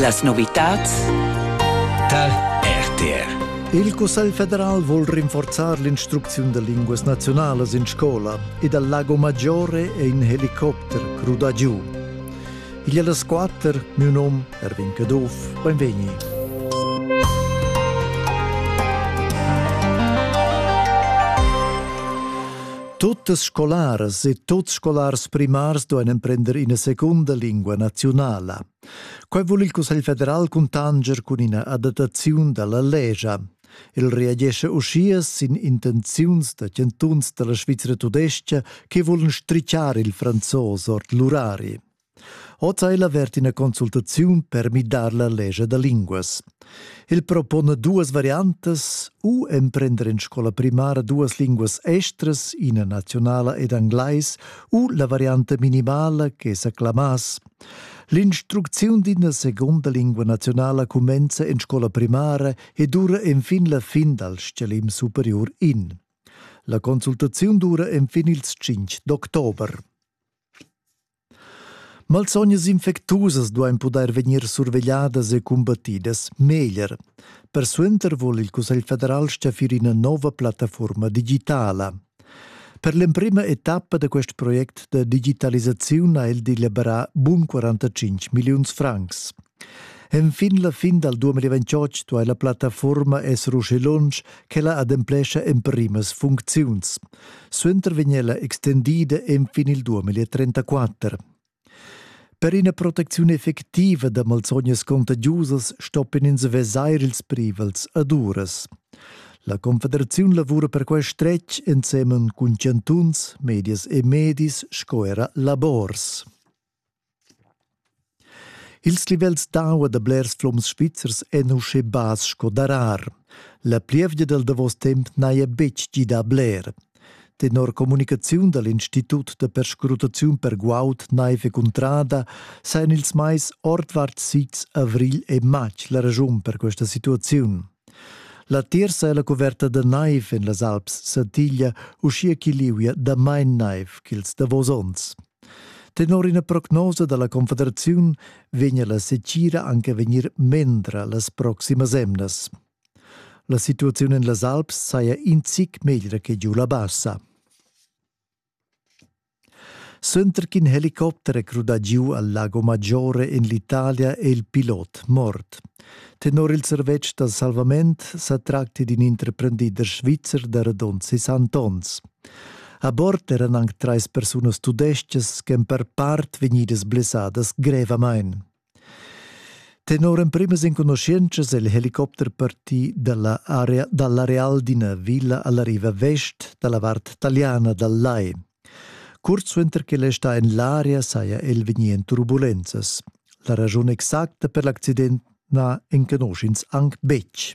Las novitads tar RTR. Il Cussegl federal vul rinforzar l'instrucziun da linguas naziunalas in scola ed al Lago Maggiore è in helicopter cruda giu. Igl è las quatter, mio nom Erwin Caduff, benvegni. Tuttas scolaras e tuts scolars primars duein emprender ina secunda lingua naziunala. Quei vul il Cussegl federal cuntanger cun ina adattaziun dalla legia. El reagesce uschia sin intenziuns da chantuns dalla Svizra tudestga che vulan strichar il franzos ord l'urari. Hoz ha el avert ina consultaziun per midar la legia da linguas. El propona duas variantas, u emprender in scola primara duas linguas estras, ina nazionala ed englais, u la varianta minimala che sa clamass. L'instrucziun d'ina seconda lingua nazionala cumenza in scola primara e dura enfin la fin dal stgalim superior in. La consultaziun dura enfin ils 5 d'october. Malsognas infectusas duain pudair vegnir survegliadas e cumbattidas meglier. Persuenter vul il Cussegl federal stgaffir ina nova plattaforma digitala. Per l'emprima etappa da quest project da digitalisaziun ha el deliberà bun 45 milliuns francs. Enfin la fin dal 2028 duai la plattafuorma esser uschi lunsch ch'ella ademplescha emprimas funcziuns. Suenter vegn ella extendida enfin il 2034. Per ina protecziun effectiva da malsognas contagiusas stoppin ins vesair ils privels ad uras. La Confederaziun lavura per quest stretg ensemen cun chantuns, medias e medis sco era labors. Ils livels d'aua da blers flums svizzers èn uschè bass sco darar. La plievgia dal davos temp n'haja betg gidà bler. Tenor communicaziun da l'Institut da perscrutaziun per guaud naiv e cuntrada sajan ils mais ordvart sids avrigl e matg la raschun per questa situaziun. La terza è la cuverta da naiv en las Alps satiglia, uschia ch'i liuia damain naiv ch'ils davos onns. Tenor ina prognosa dalla Confederaziun vegna la setgira anche vegnir mendra las proximas emnas. La situaziun en las Alps saja in zic meglra che giu la bassa. Sönder ch'in helicopter è crudà giu al Lago Maggiore en l'Italia è il pilot mort. Tenor il servetsch da salvament sa tracti d'in interprendider svizzer da radund 60 onns. A bord eran anc trais persunas tudestgas ch'èn per part vegnidas blessadas grevamain. Tenor emprimas enconuschientschas è il helicopter partì dall'areal d'ina villa alla riva vest dalla vart taliana dal Lai. Curt suenter ch'el è stà en l'aria saja el vegnì en turbulenzas. La ragiun exacta per l'accident na enconusch'ins anc betg.